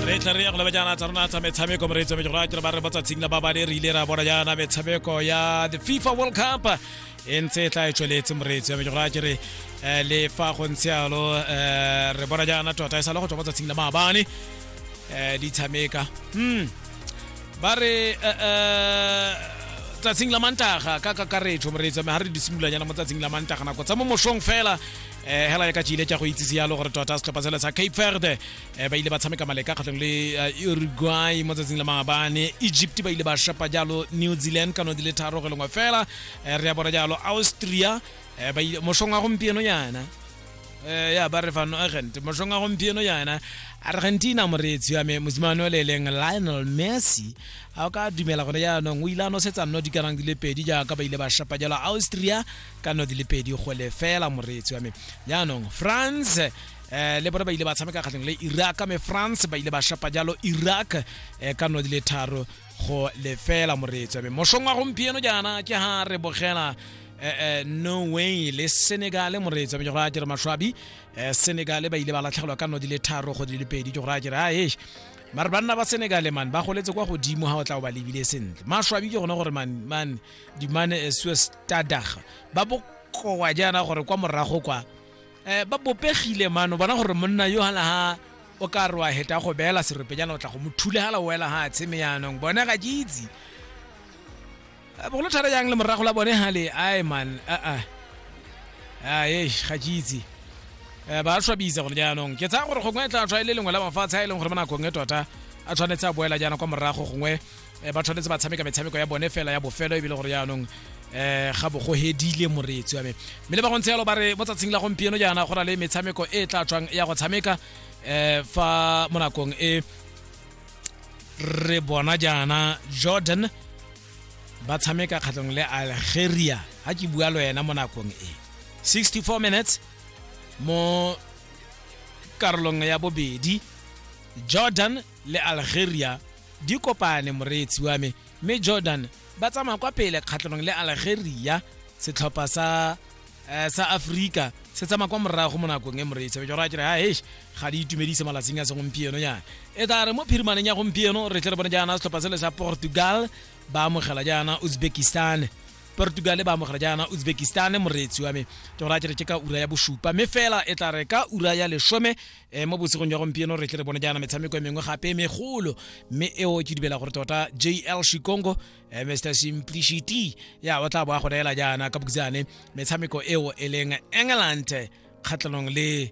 re tla re ya go leba jaana tsa rona tsa metshameko mo re tswe go ratela ba re botsa tshingla ba bane re ile ra bona jaana metshameko ya the FIFA World Cup e ntse e tla e tsweletse mo re tswe go ratela re eh, le fa go ntse yalo eh, re bona jaana tota e sa le go tswa botsa tshingla maabane eh, di tshameka hmm ba re tsatsing la mantaga ka kakaretso mo re tswe ga re di simolanyana mo tsatsing la mantaga nako tsa mo mosong fela um hela ya ka tšile tša go itsise yalo gore tota setlhopha sele sa cape verde Eh, ba ile ba tshameka maleka kgatlhong le eh, uruguay mo tsatsing la maabane egypt ba ile ba shapa jalo new zealand ka no di le tharo go lengwe fela eh, re ya bora jalo austria mošong wa gompieno yana ya ba re fano agent mošong wa gompieno yana argentina moreetsi wa me mosimane o le eleng lionel messi a o ka dumela gone jaanong o ile a nosetsa nno di kanang di le pedi jaaka ba ile ba shapa jalo austria ka nno di le pedi go lefela moreetsi wa me jaanong france eh le bona ba ile ba tshameka kgatleng le iraq me france ba ile ba shapa jalo iraq eh, ka no di le tharo go lefela moreetso mme mošong wa gompieno jaana ke ha re bogela eh, eh, norway le senegal moreetso mme ke gore a kere mašwabi eh, senegal ba ile ba latlhegelwa ka no di le tharo go di le pedi ke gore a kere a e mare banna ba senegale man ba goletse kwa godimo ga o tla o ba lebile sentle mašwabi ke gone gore man man dimane eh, suestadag ba bokoa jaana gore kwa morago kwa eh, ba bopegile mano bona gore monna yo hala ha o ka re wa heta go beela seropejana o tla go mo thule hala o wela ha tsheme yanong bone ga ke itse Eh, bogolo thara yang le morago la bone hale ai man aa ae ga ke itse Eh, ba swabisa gore jaanong ke tsaya gore gongwe e tla tswa e le lengwe la mafatshe a e leng gore mo nakong e tota a tshwanetse a boela jaana kwa morago gongwe eh, ba tshwanetse ba tshameka metshameko ya bone fela ya bofelo ebile gore jaanong um ga bo go hedile moreetsi wa me mme le ba go ntse yalo ba re mo tsatsing la gompieno jaana go na le metshameko e e tla tswang ya go tshameka um fa mo nakong e re bona jaana jordan ba tshameka kgatlhong le algeria ga ke bua le wena mo nakong e 64 minutes mo karolong ya bobedi jordan le algeria di kopane moreetsi wa me mme jordan ba tsamaya kwa pele kgatlhanong le algeria setlhopha sa eh, sa afrika se tsamaya kwa morago mo nakong e moreetsi be jora kere hae ga di itumedise malatsing a segompieno yana e tla re mo phirimaneng ya gompieno re tle re bone jaana setlhopha sele sa portugal ba amogela jaana uzbekistan portugal ba amogela jaana uzbekistan moreetsi wa me ke gora kere ke ka ura ya bosupa mme fela e tla re ka ura ya lesome um mo bosigong jwa gompieno re tle re bone jaana metshameko e mengwe gape e megolo mme eo ke dibela gore tota jl shikongo um eh, mr simplicity ya o tla boa go neela jaana ka bokutsane metshameko eo e leng england kgatlhanong le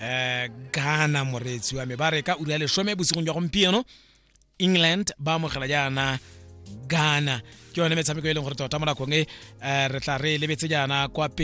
um ghana moreetsi wa me ba re ka ura ya lesome bosigong jwa gompieno england ba amogela jaana ghana ke yone metshameko e leng gore tota mo nakong e um re tla re lebetse jaana kwa pele